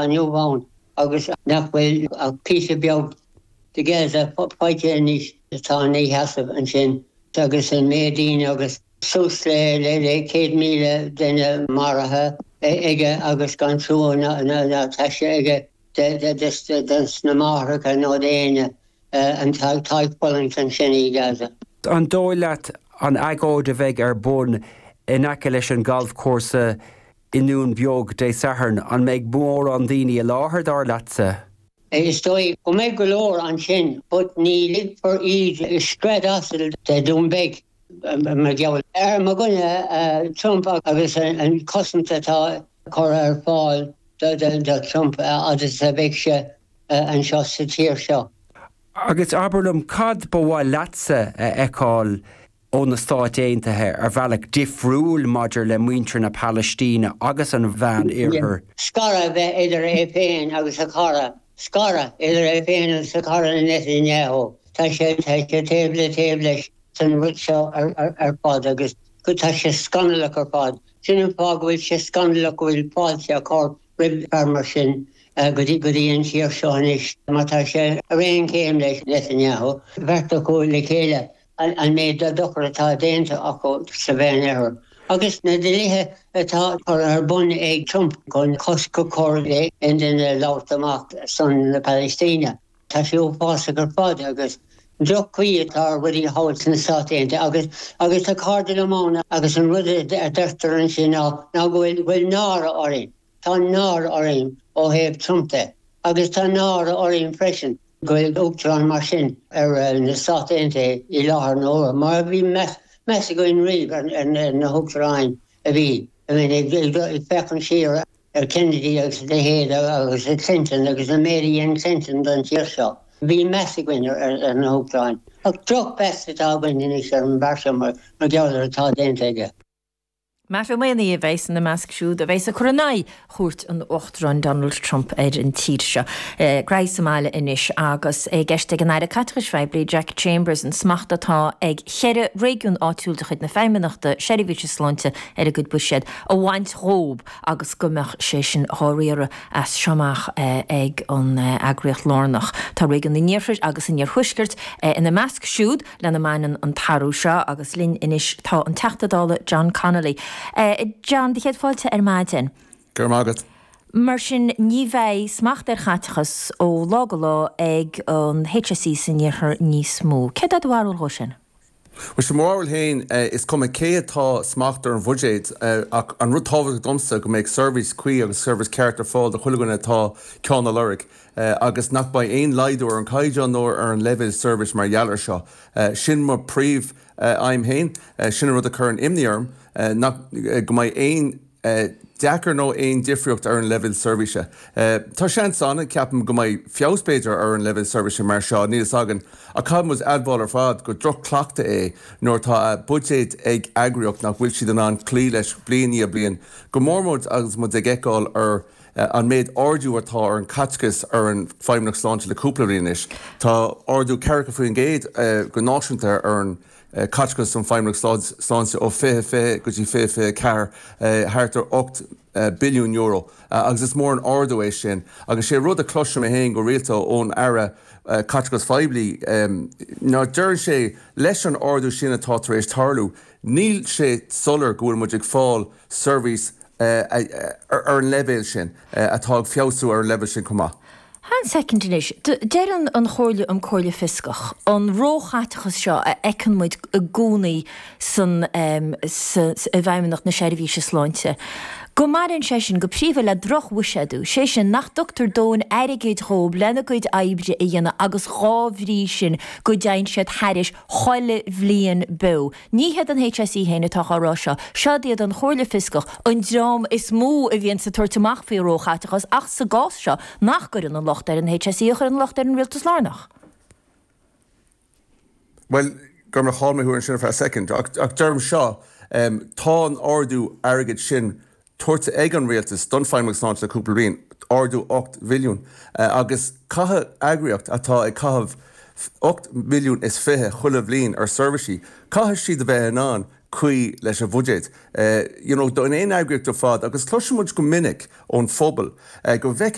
inniu ann agus nach bhfuil ach píosa beag de Gaza fágtha anois. atá ina sheasamh ansin agus an méid daoine agus suas le 100,000 duine maraithe aige agus gan trua ná taise aige dos na máithreacha ná d'éinne atá ag fulaingt ansin i Gaza. An dóigh leat an agóid a bheidh ar bun in aice leis an ghalfchúrsa I nDún Beag, Dé Sathairn, an mbeidh mórán daoine i láthair, dar leatsa? Is dóigh go mbeidh go leor ansin but ní ligfear iad i scread asail de Dún Beag mar gheall ar mo dhuine Trump agus an chosaint atá curtha ar fáil do Trump a fhad is a bheidh sé anseo sa tír seo. Agus abair liom, cad ba mhaith leatsa a fheiceáil ó na Stáit Aontaithe ar bhealach difriúil maidir le muintir na Palaistíne agus an Mheánoirthir. Scaradh a bheith idir é féin agus a chara, scaradh idir é féin agus a chara Netanyahu, tá sé taobh le taobh leis san rud seo ar fad agus tá sé scannalach ar fad. Sin an fáth go bhfuil sé scannalach go bhfuil fáilte á cur roimh fear mar sin go dtí an tír seo anois mar tá sé ar aon chéim le Netanyahu, beirt acu le chéile. an méid de dhochar atá déanta acu sa Mheánoirthear, agus na dlíthe atá curtha ar bun ag Trump chun cosc a chur ar aon duine labhairt amach ar son na Palaistíne. Tá sé uafásach ar fad, agus droch-chaoi atá ar rudaí thall sna Stáit Aontaithe, agus tá cairde liom ann, agus an rud a deirtear ansin ná go bhfuil náire orainn. Tá náire orainn ó thaobh Trump de agus tá náire orainn freisin go bhfuil Uachtarán mar sin ar na Stáit Aontaithe i láthair na huaire, mar a bhí meas againn riamh ar na hUachtaráin a bhí, ag féachaint siar ar Kennedy agus a leithéid agus ar Clinton agus an méid a dhein Clinton don tír seo. Bhí meas againn ar na hUachtaráin. Ach drochmheas atá againn anois ar an bhfear seo mar gheall ar atá déanta aige. Matt Ó Mathúna a bheas ina measc siúd a bheas ag cur in aghaidh chuairt an Uachtaráin Donald Trump ar an tír seo. Gnothaí sa mbaile anois agus é i gceist ag an Aire Caiteachais Phoiblí Jack Chambers an smacht atá ag cheithre réigiún áitiúil de chuid na Feidhmeannachta Seirbhíse Sláinte ar a gcuid buiséad a bhaint dhóibh agus go mbeadh sé sin dhá riaradh as seo amach ag an eagraíocht lárnach. Tá réigiún an iarthair agus an iarthuaiscirt ina measc siúd. lena mbaineann an t-athrú seo agus linn anois tá an Teachta Dála John Connolly. John, do chéad fáilte ar maidin. Go raibh maith agat. Mar sin, ní bheidh smacht ar chaiteachas ó lá go lá ag an HSE san iarthar níos mó. Céard é do bharúil dhó sin? Bhuel, sé mo bharúil féin. Is cuma cé atá i smacht ar an bhuiséad ach an rud tábhachtach domsa go mbeidh seirbhís cuí agus seirbhís ceart ar fáil do chuile dhuine atá ceann a lorg. agus nach mbeidh aon laghdú ar an gcaighdeán nó ar an leibhéal seirbhís mar gheall air seo. Sin mo phríomh aidhm féin. Sin an rud a cuireann imní orm, nach go mbeidh aon deacracht nó aon difríocht ar an leibhéal seirbhíse. Tá seans ann, ceapaim, go mbeidh feabhas b'fhéidir ar an leibhéal seirbhíse mar seo, níl fhios againn, ach caithfidh muid admháil ar fad gur droch-chleachtadh é nuair atá buiséad ag eagraíocht nach bhfuil siad in ann cloí leis bliain i ndiaidh bliain, go mór mór agus muid ag feiceáil ar An méid ardú atá ar an caiteachas ar an Feidhmeannacht Sláinte le cúpla bliain anois, tá ardú ceathracha faoin gcéad go náisiúnta ar an chaiteachas don Feidhmeannacht Sláinte ó 2020 go dtí 2024, thart ar €8 billiún, agus is mór an ardú é sin. Agus sé rud a chloiseann mé féin go rialta ón Aire Caiteachais Phoiblí ná deireann sé leis an ardú sin atá tar éis tarlú níl sé soiléir go bhfuil muid ag fáil seirbhís ar an leibhéal sin, atá ag feabhsú ar an leibhéal sin chomh maith. Fan soicind anois. Deir an Chomhairle um Chomhairle Fhioscach, an róchaiteachas seo a fheiceann muid i gcónaí i bhFeidhmeannacht na Seirbhíse Sláinte, go mbaineann sé sin go príomha le drochbhuiséadú, sé sin, nach dtugtar dóthain airgid dhóibh lena gcuid oibre a dhéanamh agus dhá bhrí sin go dtéann siad thairis chuile bhliain beo. Ní hiad an HSE féin atá á rá seo, seod iad an Chomhairle Fioscach, an dream is mó a bhíonns ag tabhairt amach faoi róchaiteachas ach sa gcás seo ní chuireann an locht ar an HSE ach cuireann an locht ar an Rialtas lárnach. Bhuel, gabh mo leithscéal, chaill mé thú ansin ar feadh soicind, ach deirim seo, tá an ardú airgid sin tabhartha ag an Rialtas don Feidhmeannacht Sláinte le cúpla bliain, ardú ocht mbilliún, agus caithfidh, eagraíocht atá ag caitheamh ocht mbilliún is fiche chuile bhliain ar seirbhísí, caithfidh siad a bheith in ann cloí leis an bhuiséad. you know, d'aon eagraíocht ar fad agus cloisimid go minic ón phobal go bhfeiceann